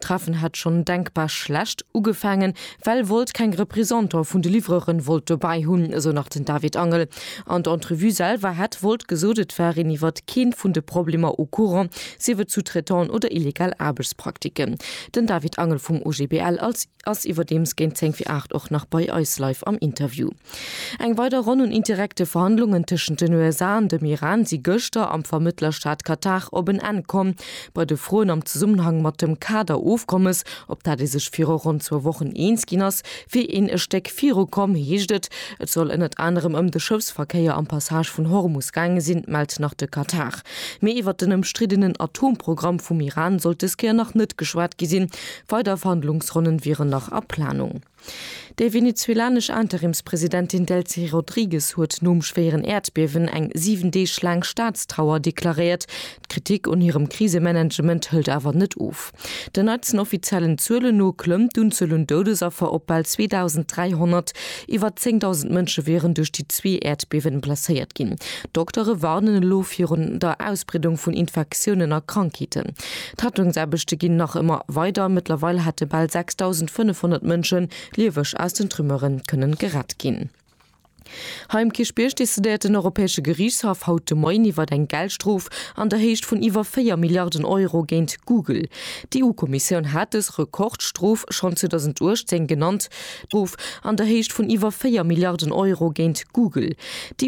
D'Treffen hätt schonn denkbar schlecht ugefaangen, well Wolt keng Reprisanter vun de Livreuren wollt dobäi hunn, esou nach den David Angel. An der Entrevue selwer hätt Wolt gesot, et war een iwwert keen vun de Problemer au courant, sief et Sous-traitants oder illegal Aarbechtspraktiken. Den David Angel vum OGBL als ass iwwerdeems géint 10 fir 8 och nach bei eis live am Interview. Eng weider Ronn un indirekte Verhandlungen tëschent den USA an dem Iran si gëschter am Vermëttlerstaat Katar op en Enn komm. Bei de Froen am Zesummenhang mat dem Kader-Ofkommes, op dat ee sech viru ronn zwou Wochen eens ginn ass, wier een e Stéck viru komm, heescht et. Et soll ënnert anerem ëm de Schëffsverkéier am Passage vun Hormus gaange sinn, mellt nach de Katar. Mee iwwert den ëmstriddenen Atomprogramm vum Iran sollt des Kéier nach net geschwat gi sinn. Weider Verhandlungsronnen wieren nach a Planung. Déi venezuelanesch Interimspresidentin Delcy Rodrigues huet nom schwéieren Äerdbiewen eng 7 Deeg laang Staatstrauer deklaréiert. D'Kritik un hirem Krisemanagement hëlt awer net of. Den neitsten offiziellen Zuelen no klëmmt d'Unzuel un Doudesaffer op bal 2.300. Iwwer 10.000 Mënsche wieren duerch déi zwee Äerdbiewen blesséiert ginn. D'Doktere warnen elo virun der Ausbreedung vun Infektiounen a Krankheeten. D'Rettungsaarbechte ginn nach ëmmer weider. Mëttlerweil hätte bal 6.500 Mënsche lieweg aus den Trümmere kënne gerett ginn. Hei um Kierchbierg decidéiert den Europäesche Geriichtshaff haut de Moien iwwer eng Geldstrof an der Héicht vun iwwer 4 Milliarden Euro géint Google. D'EU-Kommissioun hat dës Rekordstrof schonn 2018 genannt. D'Strof an der Héicht vun iwwer 4 Milliarden Euro géint Google.